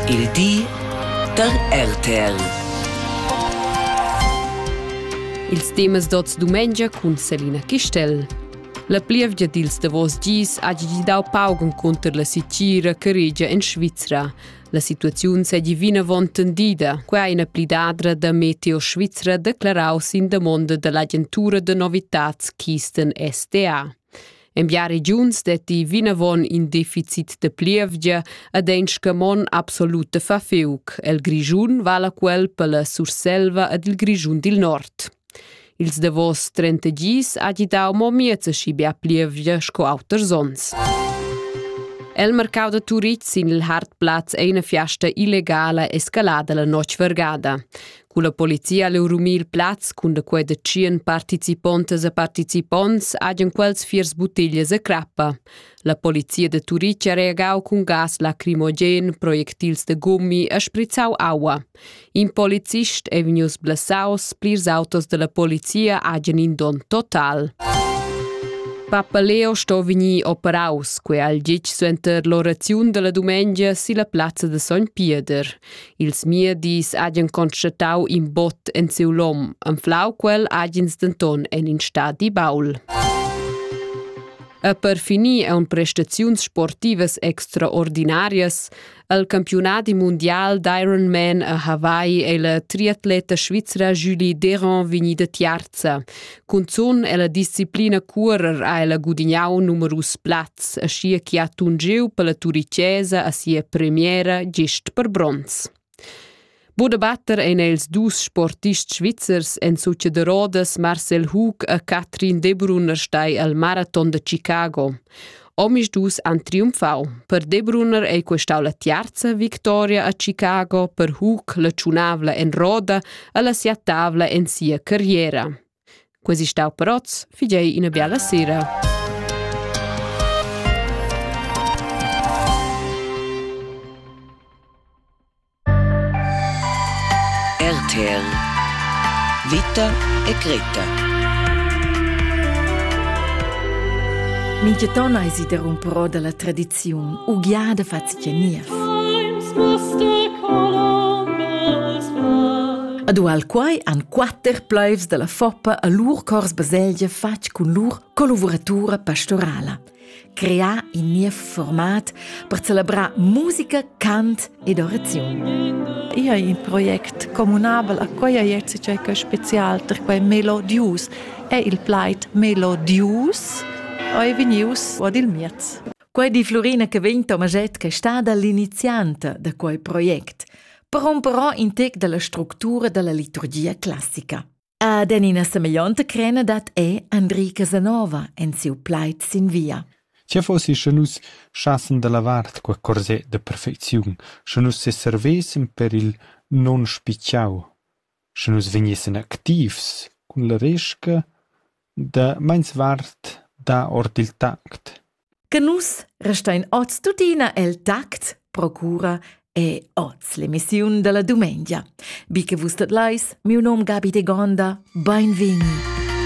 Il di da RTL. Ils temas d'oz dumengia cun Selina Chistel. La plievgia dils davos dis ha gidau pauc encunter la sitgira che regia en Svizra. La situaziun seigi vinavon tendida, quei ina plidadra da Meteo Svizra declarau sin damonda dall'agentura da novitads Kisten SDA. En bia regiuns detti vinavon in deficit de plievgia ed ein scamon absolut de fafiuc. El Grischun vala quel per la Surselva ed il Grischun dil Nord. Ils davos 30 gis ha gidau mo miezeschi bia plievgia sco auters onns. El mercau da Turitg sin il Hartplatz ei una fiasta illegala escalada la notg vargada. Culla polizia leu rumir plaz cun da quei da tschien participontas e participonts hagen quels fiers buttiglias e crappa. La polizia de Turic ha reagau cun gas lacrimogen, projectils de gummi e sprizzau aua. In polizist è vegnius blessaus, plirs autos della polizia hagen in don total. Papa Leo sto vegnir operaus, quei al gitg suenter l'oraziun della dumengia silla plazza de Sogn Pieder. Ils miedis hagen constatau in bot en siu lom, anflau quel hagens denton en in stadi baul. E per finir ein prestaziuns sportivas extraordinarias. El campionadi mundial d'Ironman a Hawaii ei la triatleta svizra Julie Deron vegnida tiarza. Cunzun ella disciplina cuorer ha ella gudignau numerus plazs, aschia che ha tungiu per la turicesa a sia premiera gist per bronz. Buda batter ein els dus sportists svizzers en suce de Rodas Marcel Hug e Katrin Debrunner stai al Marathon de Chicago. Omisdus han triumfau. Per Debruner ei questau la tiarza victoria a Chicago per Hug la tschunavla en roda e la siatavla en sia carriera. Quasi stau peroz, figei ina biala sera. RTL Vita e Greta Mintgaton eisi derumperò dalla tradiziun ugliada fatg niev. Ad ual quai han quatter pleivs dalla Foppa a lur cors baselgia fatg cun lur collaboratura pastorala. crear in niev format per celebrar musica, cant ed oraziun. Io hai in project communabel a quai ajer cioè che special per quai melodius è il plaid melodius e venius ad il miez. Quai di Florina che vegn Tomaget che sta dall'inizianta da quai project, per romperò in tec dalla structura dalla liturgia classica. Ad en ina semeglionta crena dat è Andri Casanova en siu plaid sin via. Tge fossi sche nus schassen da la vart qua corsè de perfecziun, sche nus se servessen per il non spicciau, sche nus vegnessen activs cun la resca da meins vart da ord il tact, che nus restein oz tuttina el tact, procura e oz l'emissiun della dumengia. Bi che vus dat leis, miu nom Gabi de Gonda, beinvegni!